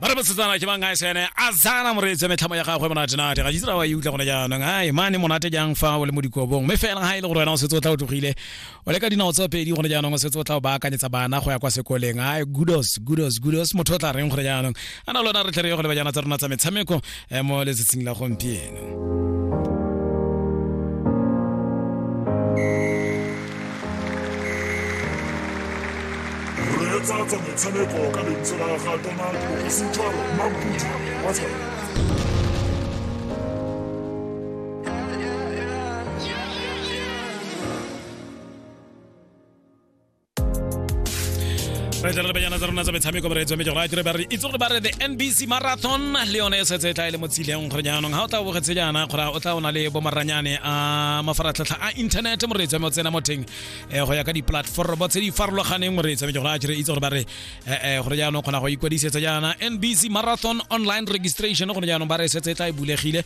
ba re bosetsana ke bangae sene a zana moreetsi me tlhamo ya gagwe monate nate ga jitsira wa e utlwa gone jaanong ai mane monate jang fa o le mo dikobong mme fela ga e le gore wena o setse o tla o tlogile o le ka dinao tsa pedi gone jaanong o setse o tla o baakanyetsa bana go ya kwa sekoleng ai gudos gudos gudos motho o tla reng gore jaanong a na lona re tlhere go le bajana tsa rona tsa metshameko e mo letsatsing la gompieno tlatsa metshameko ka lentswe la ga tona kgosi jalo mabudu wa re tle re lebanyana tsa rona tsa metshameko moreetsi wa mejora dire bare itse gore ba re the nbc marathon le yone e setse e tla e le mo tsileng gore jaanong ga o tla bogetse jaana gore o tla o na le bomaranyane a mafaratlhatlha a internet moreetsi wa me o tsena mo teng eh, go ya ka di-platformo tse di farologaneng moreetsi wa mejora dire itse gore ba re eh, eh, gore jaanong kgona go ikwadisetsa jaana nbc marathon online registration gore jaanong ba re e setse e tla e bulegile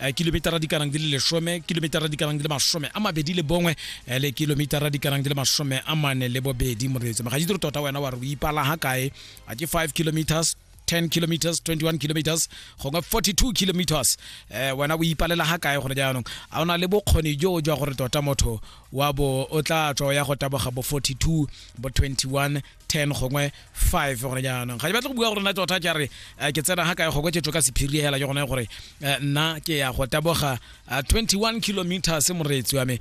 eh, kilometara di kanang di le lesome kilometara di kanang di le masome a mabedi le bongwe eh, le kilometara di kanang di le masome a mane le bobedi moreetso magaji tiro tota wena wa re o ipala ga kae a ke 5 kilometers 10 kilometers 21 kilometers gongwe 42 kilometers eh wena o ipalela ga kae gore jaanong a o na le bokgoni jo jwa gore tota motho wa bo o tla tswa ya go taboga bo 42 bo 21 ten gongwe five gone jaanong ga di batle go bua gore nna tota ke re eh, ke tsena ga kae goko ke tloka sephiri hela ke gone gore eh, nna ke ya go taboga 21 eh, kilometers moreetsi wa me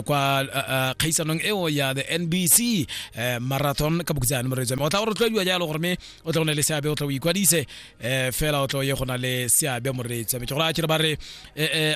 kwa kgaisanong eo ya the nbc marathon ka bokutsane moreetsi wa me o tla go rotloediwa jalo gore me o tla go ne le seabe o tla o ikwadise fela o tla o ye go na le seabe moreetsi wa me ke gore a kere ba re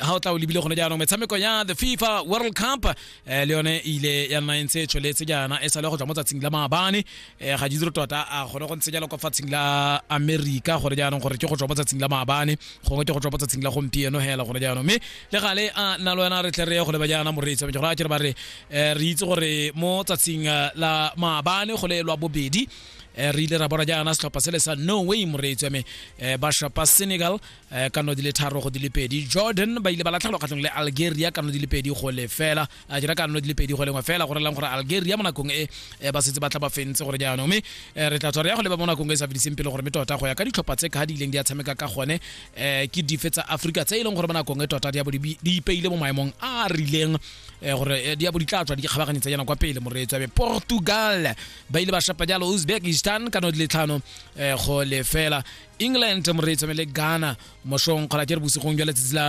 ga o tla o lebile gone jaanong metshameko ya the fifa world cup eh le yone ile ya nna e ntse e tsholetse jaana e sale go tswa mo tsatsing la maabane eh ga ditsiro tota a gone go ntse jalo kwa fatsing la america gore jaanong gore ke go tswa mo tsatsing la maabane gongwe ke go tswa mo tsatsing la gompieno hela gore jaanong mme le gale a nna le wena re tle re ye go leba jaana moreetsi wa gore a kere ba re eh, re itse gore mo tsatsing eh, la maabane go le lwa bobedi eh, re ile ra bona jaana setlhopha se le sa norway moreetsi wa me eh, ba shapa senegal eh, ka no di le tharo go di le pedi jordan ba ile ba latlhelwa kgatlhong le algeria ka no di le pedi go le fela a dira ka no di le pedi go lengwe fela go relang gore algeria mo nakong e eh, ba setse ba tla ba fentse gore jaanong mme eh, re tla tswa re ya go leba mo nakong e sa fediseng pele gore mme tota go ya ka ditlhopha tse ka di ileng di a tshameka ka gone eh, ke dife tsa africa tse e leng gore mo nakong e tota di a bo di bi- di ipeile mo maemong a a rileng eh, gore eh, di a bo di tla tswa di kgabaganyetsa yana kwa pele moreetso be portugal ba ile ba shapa jalo uzbekistan ka no di le tlhano eh, go le fela england mo re tsome le ghana mosong kgona ke re bosigong jwa letsatsi la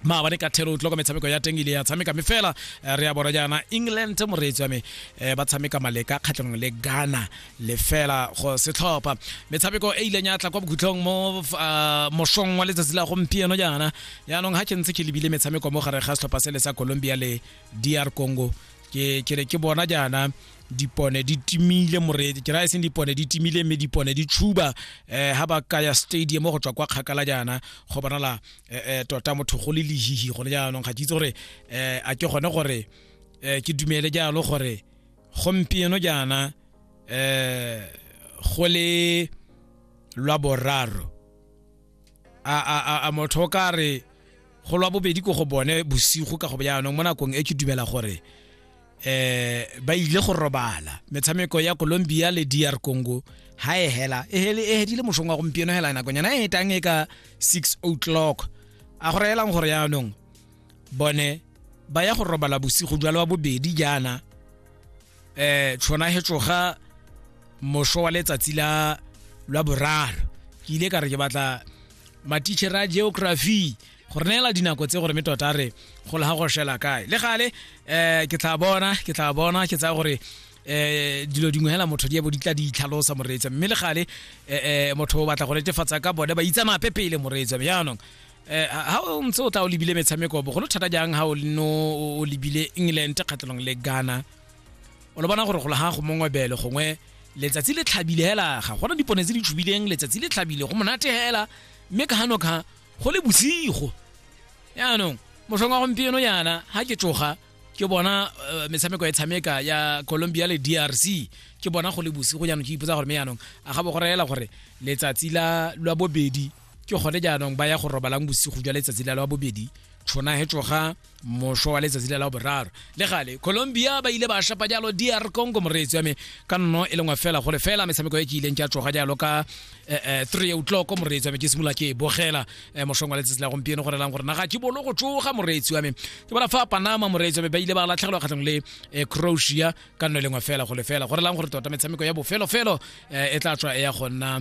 maabane ka thero tlo ka metshameko ya teng ile ya tshameka me fela eh, re ya bona jaana england moreetsi wa me eh, ba tshameka maleka kgatlhanong le ghana le fela go setlhopha metshameko e ileng ya tla kwa bokhutlhong mo ah, mosong wa letsatsi la gompieno jaana yaanong ga ke ntse ke lebile metshameko mo gare ga setlhopha se le sa colombia le dr congo ke ke ne ke bona jaana dipone di timile moredi ke raya seng dipone di timile mme dipone di tshuba eh ha ba kaya stadium go tswa kwa kgakala jaana go bonala eh, eh, tota motho go le lehihi gone jaanong ga ke itse gore eh a ke gone gore eh ke dumele jalo gore gompieno jaana eh go le lwa boraro a a a- a motho o ka re go lwa bobedi ko go bone bosigo ka go jaanong mo nakong e ke dumela gore eh ba ile go robala metshameko ya Colombia le DR Congo ha e hela e hele e hedile moshong wa gompieno hela nako nyana e tang e ka 6 o'clock a go reelang gore yaanong bone ba ya go robala bosigo jalo wa bobedi jaana eh tshona he tsoga mosho wa letsatsi la lwa boraro ke ile ka re ke batla matitšhere a geography go re neela dinako tse gore me tota re gole ga go shela kae le gale um ke tla bona ke tla bona ke tsaya gore eh dilo dingwe hela motho di bo di tla di itlhalosa moreetsa mme le gale eh motho o batla go netefatsa ka bone ba itsa mape pele moreetsa jaanong eh ha o ntse o tla o lebile metshameko bogolo thata jang ha o no o lebile England kgatlelong le Ghana o le bona gore go le ha go mongwe bele gongwe letsatsi le tlhabile hela ga gona dipone tse di tshubileng letsatsi le tlhabile go monate hela mme ka hano ka go le bosigo yaanong mosong wa gompieno yana ga ke tsoga ke bona uh, metshameko e tshameka ya colombia le drc ke bona go le bosigo jaanong ke ipotsa gore me yaanong a ga bo go reela gore letsatsi la lwa bobedi ke gone jaanong ba ya go robalang bosigo jwa letsatsi la lwa bobedi tshona he tsoga mošwa wa letsatsi le la boraro le gale colombia ba ile ba shapa jalo dr congo moreetsi wa me ka nno e lengwe fela gore fela metshameko e ke ileng ke a tsoga jalo ka eh, eh, three o'clock moreetsi wa me ke simolola ke e bogela eh, mošong wa letsatsi la gompieno gore lang gore naga ke bolo go tsoga moreetsi wa me ke bona fa panama moreetsi wa me ba ile ba latlhegelwa kgatlhong le croatia ka nno e lengwe fela go lefela gore lang gore tota metshameko ya bofelofelo e tla tswa e ya go nna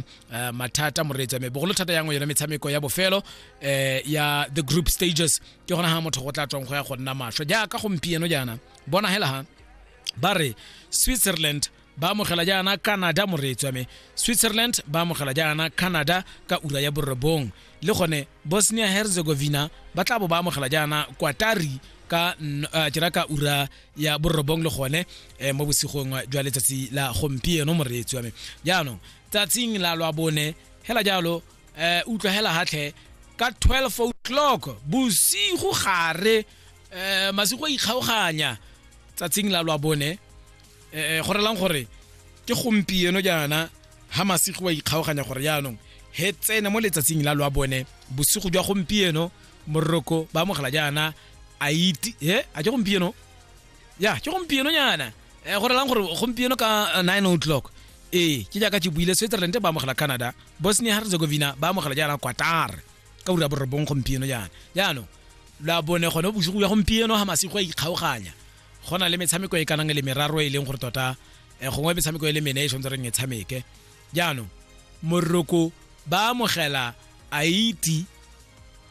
mathata moreetsi wa me bogolo thata yangwe yone metshameko ya bofelo ya the group stages ke gona ga motho go tla tswang go ya go nna masho jaaka gompieno jaana bona hela ha ba re switzerland ba amogela jaana canada moreetsi wa me switzerland ba amogela jaana canada ka ura ya borobong le gone bosnia herzegovina ba tla bo ba amogela jaana kwatari ka uh, ke ka ura ya borobong le gone eh, mo bosigong jwa letsatsi la gompieno moreetsi wa me jaanong tsatsing la lwa bone hela jalo eh utlwa hela hatlhe ka 12 o'clock bosigo gare eh masigo a ikgaoganya tsatsing la lwa bone eh go relang gore ke gompieno jaana ha masigo a ikgaoganya gore jaanong he tsene mo letsatsing la lwa bone bosigo jwa gompieno moroko ba amogela jaana a iti he a ke gompieno ya ke gompieno nyana eh go relang gore gompieno ka 9 eh, o'clock ee ke jaaka ke buile switzerland ba amogela canada bosnia herzegovina ba amogela jaana quatar ka ura borobong gompieno jaana jaanong la bone gone bosigo ya gompieno ga masigo a ikgaoganya go na le metshameko e kanang e le meraro e leng gore tota eh, gongwe metshameko e le mene e tshwanetse reng e tshameke jaanong moroko ba amogela haiti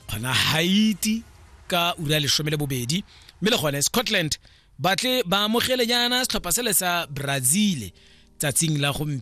kgona haiti ka ura lesome le bobedi mme le gone scotland Batle ba amogele jaana setlhopha sele sa Brazil tsatsing la gompieno.